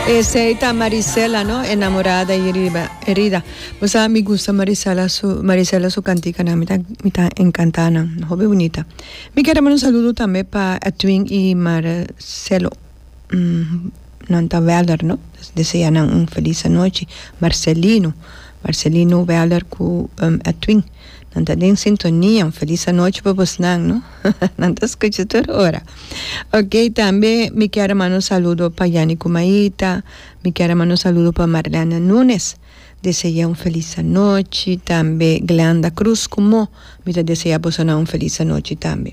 Esey ta Marisela no enamorada y riba herida. Bo sa mi gusta Marisela su Marisela su canticanan mi ta mi ta encanta nan hopi bonita. Mi quiere mandar un saludo tambe pa Edwin y Marcelo mm nan ta Weller no desea nan un feliz anochi Marcelino Marcelino Weller cu Edwin. Nan ta den sintonia, un felis anochi pa bosnan no nan ta scucha tur ora ok tambe mi kier a manda un saludo pa Yani Kumaita mi kier a manda un saludo pa Marlene Nunes dese'e un felis anochi tambe Glenda Cruz ku mó mi ta dese'e bosonan un felis anochi tambe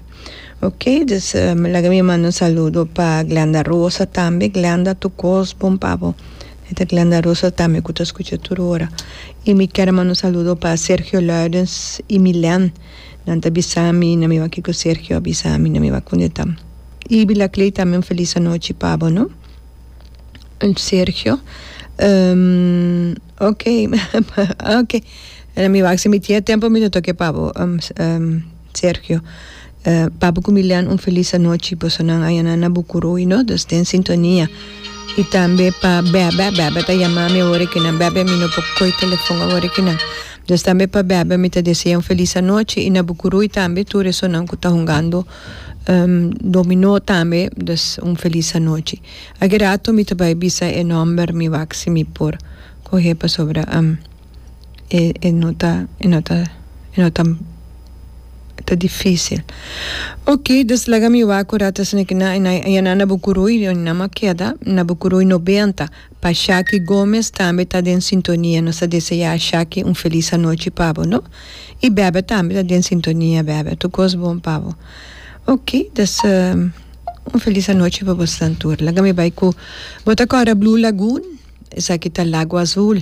ok dus laga mi manda un saludo pa Glenda Rosa tambe Glenda tu kos bon pa bo. E ta Glenda Rosa tambe cu ta scucha tur ora. Y mi ker a manda un saludo pa Sergio Luidens y Milen. Nan ta bisa mi na mi wak kico Sergio a bisa mi na mi wak cunde ta. Y Vilacley tambe un feliz anochi pabo, no? Sergio, ok, ok. Na mi wak si mi tin e tempo mi lo toke pabo. Sergio, Papu ku Milian un felis anochi, boso nan ayanan na Bukuru y no dos den sintonia. Y tambe pa Bebe, Bebe ta yama mi awor aki nan, Bebe mi no por koy telefon awor aki nan. Entonces tambe pa Bebe mi ta desea un felis anochi y na Bukuruy tambe tur esonan ku ta hungando dominó tambe entonces un felis anochi. Aki rato mi ta bai bisa e nomber mi wak si mi por kohe pasobra. e e no ta e no ta e no ta ta dificil ok dus laga mi wak ora ta sende kina e nan na bukuruy e nan a keda na bukuruy noventa pa shaki Gomez tambe ta den sintonia nos ta desea shaki un feliz anochi pa bo no y bebe tambe ta den sintonia bebe tur cos bon pa bo ok dus un feliz anochi pa bosnan tur laga mi bay cu bo ta cora Blue Lagoon esaki ta lago azul.